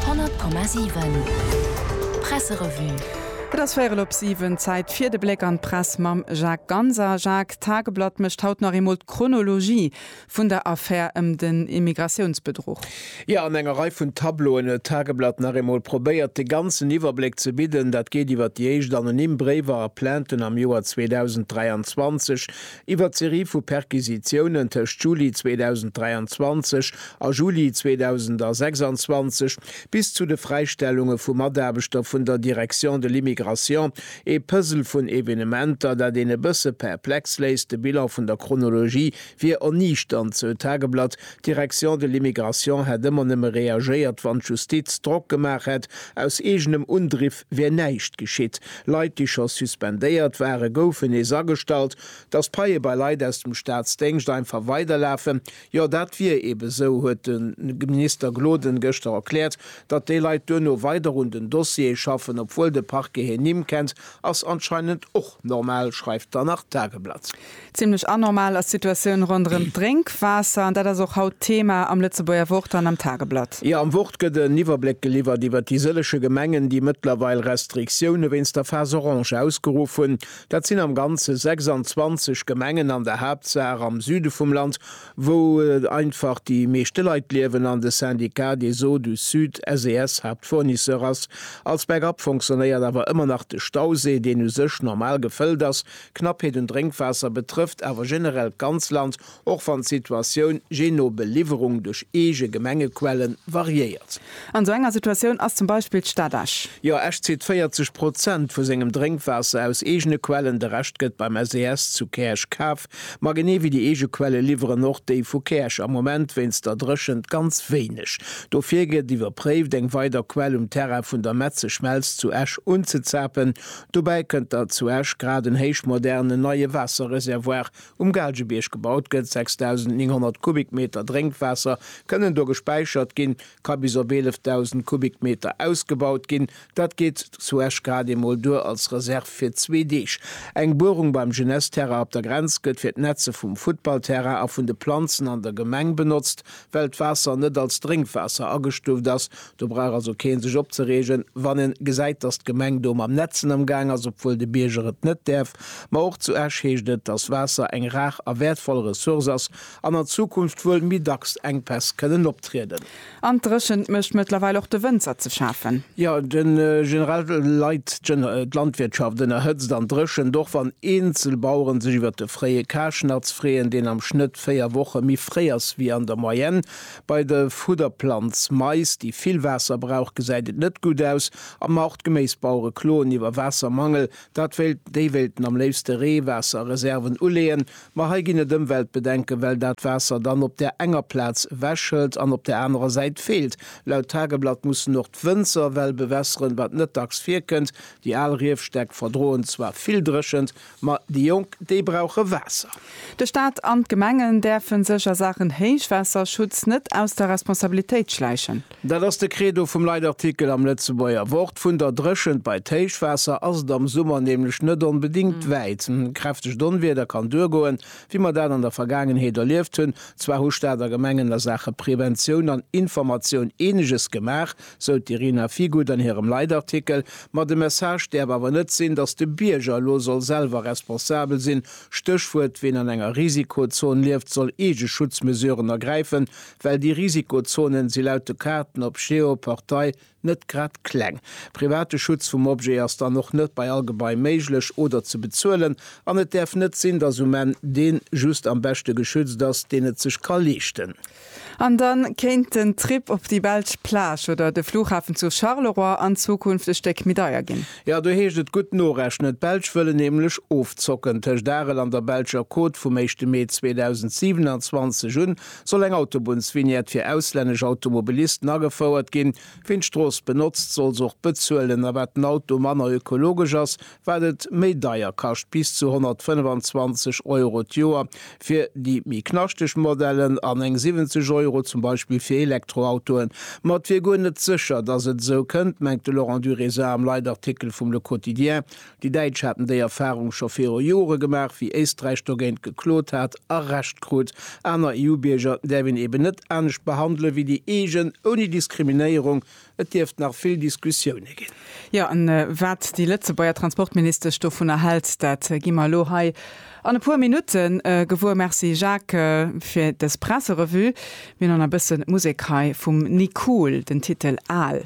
100,7 Presserevue Et ass véierel op siwen, Zäit fir de Bléck an d'Press mam Jacques Ganser. Jacques, d'Tageblatt mécht haut nach eemol d'Chronologie vun der Affär ëm den Immigratiounsbedruch. Jo, an enger Rei vun Tableauen huet d'Tageblatt nach eemol probéiert, de ganzen Iwwerbléck ze bidden. Dat geet iwwer déi éischt anonym Bréiwer a Plainten am Joer 2023, Iwwer d'Serie vu Perquisitiounen tëscht Juli 2023 a Juli 2026 bis zu de Fräistellunge vu Mataarbechter vun der Direction de l'immigration, ee Puzzle vun Evenementer, dat een e bësse perplex léisst. De Bilan vun der Chronologie wier erniichternd, sou d'Tageblatt. D'Direction de l'immigration hätt ëmmer nëmme reagéiert, wann d'Justiz Drock gemaach hätt, aus eegenem Undriff. wier näischt geschitt. Leit, déi scho suspendéiert waren, goufen nees agestallt. Datt d'Paie bei Leit aus dem Staatsdéngscht einfach weiderlafen, jo dat wier eebe esou, huet de Minister Gloden gëschter erkläert. Datt déi Leit duerno weider un den Dossiere schaffen, obwuel de Parquet hir Nimm kennt, ass anscheinend och normal, schreift d'Anach Tageblatt. Zimmlech anormal ass d'Situatioun ronderëm d'Drénkwaasser an dat ass och haut Thema am Lëtzebuerger Wort an am Tageblatt. Jo, am Wort gëtt en Iwwerbléck geliwwert iwwer déi sëllege Gemengen, déi mëttlerweil Restriktioune wéinst der Phase Orange ausgeruff hunn. Dat sinn am Ganze 26 Gemengen, an der Haaptsaach am Süde vum Land, wou einfach déi meeschte Leit liewen an de Syndicat des Eaux du Sud, SES, Haaptfournisseur ass. Als Backup fonctionnéiert awer ëmmer nach de Stausee, deen u sech normal gefëllt ass, D'Knappheet un Drénkwaasser betrëfft awer generell d'ganz Land, och wann d'Situatioun jee no Beliwwerung duerch eege Gemengequelle variéiert. An esou enger Situatioun ass zum Beispill d'Stad Esch. Jo, Esch zitt 40 Prozent vu sengem Drénkwaasser aus eegene Quellen, de Rescht gëtt beim SES zu Käerch kaf. Ma genee wéi déi eege Quelle liwweren och déi vu Käerch am Moment wéinst der Dréchent ganz wéineg. Dofir gëtt iwwerpréift, eng weider Quell um Terrain vun der Metzeschmelz zu Esch unzezapen, Dobäi kënnt, datt zu Esch grad en héichmodernen neie Waasserreservoir um Gaalgebierg gebaut gëtt. 6.900 Kubikmeter Drénkwaasser kënnen do gespäichert ginn, ka bis op 11.000 Kubikmeter ausgebaut ginn. Dat geet zu Esch grad eemol duer als Reserv fir zwee Deeg. Eng Buerung beim Jeunesse-Terrain op der Grenz gëtt fir d'Netze vum Futtballterrain a vun de Planzen an der Gemeng benotzt. Well d'Waasser net als Drénkwaasser agestuft ass, Do brauch also keen sech opzereegen, wann en gesäit, dass d'Gemeng do mam Netzen am gaang ass, obwuel de Bierger et net däerf. Ma och zu Esch heescht et, dass Waasser eng rar a wäertvoll Ressource ass an an Zukunft wuel méi dacks Enkpäss kënnen optrieden. An d'Dréchent mécht mëttlerweil och de Wënzer ze schafen. Jo, de General leit d'Landwirtschaft ënner Hëtzt an Dréchent, och wann eenzel Baueren sech iwwer de fréie Karschnatz freeën, deen am Schnëtt 4 Woche méi fréi ass wéi an der Moyenne. Bei de Fudderplanz Mais, déi vill Waasser brauch, gesäit et net gutt aus. Am Nord, d'Geméisbauere kloen iwwer Waassermangel. Dat wéilt, déi wéilten am léifste Reewaasserreserven uleeën. Ma hei ginn et Ëmweltbedenken, well dat Waasser dann op där enger Plaz ewechhëlt an op där anerer Säit feelt. Laut Tageblatt mussen och d'Wënzer well bewässeren, wat net dacks virkënnt. Déi al Riefstäck verdroen zwar vill Dréchent, Ma déi Jonk, déi brauche Waasser. De Staat an d'Gemengen däerfen sech a Saachen Héichwaasserschutz net aus der Responsabilitéit schläichen. Dat ass de Credo vum Leitartikel am Lëtzebuerger Wort. Vun der Dréchent bei d'Héichwaasser ass et am Summer nämlech net onbedéngt wäit. Kräftegt Onwieder kann duergoen, wéi mer dat an der Vergaangenheet erlieft hunn. Zwar hu Staat a Gemengen a Saache Preventioun an Informatioun eeneges gemaach. sou d'Irina Figut an hirem Leitartikel. Ma de Message däerf awer net sinn, datt de Bierger elo soll selwer responsabel sinn. Stéchwuert, Ween an enger Risikozon lieft, soll eege Schutzmesuren ergräifen, well déi Risikozonen si laut de Kaarten op Geoportail net grad kleng. Private Schutz vum Objet ass dann och net bei all Gebai méiglech oder ze bezuelen an et däerf net sinn, datt um Enn dee just am beschte geschützt ass, deen et sech ka leeschten. An dann kéint den Trip op déi belsch Plage oder de Flughafen zu Charleroi an Zukunft e Stéck méi deier ginn. Jo, do heescht et gutt norechnen. D'Belsch wëllen nämlech ofzocken. Tëscht Arel an der belscher Côte vum éischte Mee 2027 un soll eng Autobunnsvignette fir auslännesch Automobilisten agefouert ginn. Wien d'Strooss benotzt, soll se och bezuelen. A wat den Auto manner ökologesch ass, wat et méi deier kascht, bis zu 125 Euro d'Joer fir déi méi knaschteg Modellen an eng 70 Euro zum Beispill fir Elektroautoen. Ma et wier guer net sécher, datt et esou kënnt, mengt de Laurent Durézat am Leitartikel vum Le Quotidien. Déi Däitsch hätten déi Erfarung scho viru Jore gemaach, wéi Éisträich dogéint geklot hat a Recht krut. Aner EU-Bierger däerf een eben net anescht behandelen, wéi déi eegen, ouni Diskriminéierung, Et dierft nach vill Diskussioune ginn. Jo, an wat déi Lëtzebuerger Transportministesch dovunner hält, dat gi mer elo hei an e puer Minutte gewuer. Merci Jacques fir dës Presserevue. Mir hunn nach e bësse Musek hei vum Nicool, den Titel Aal.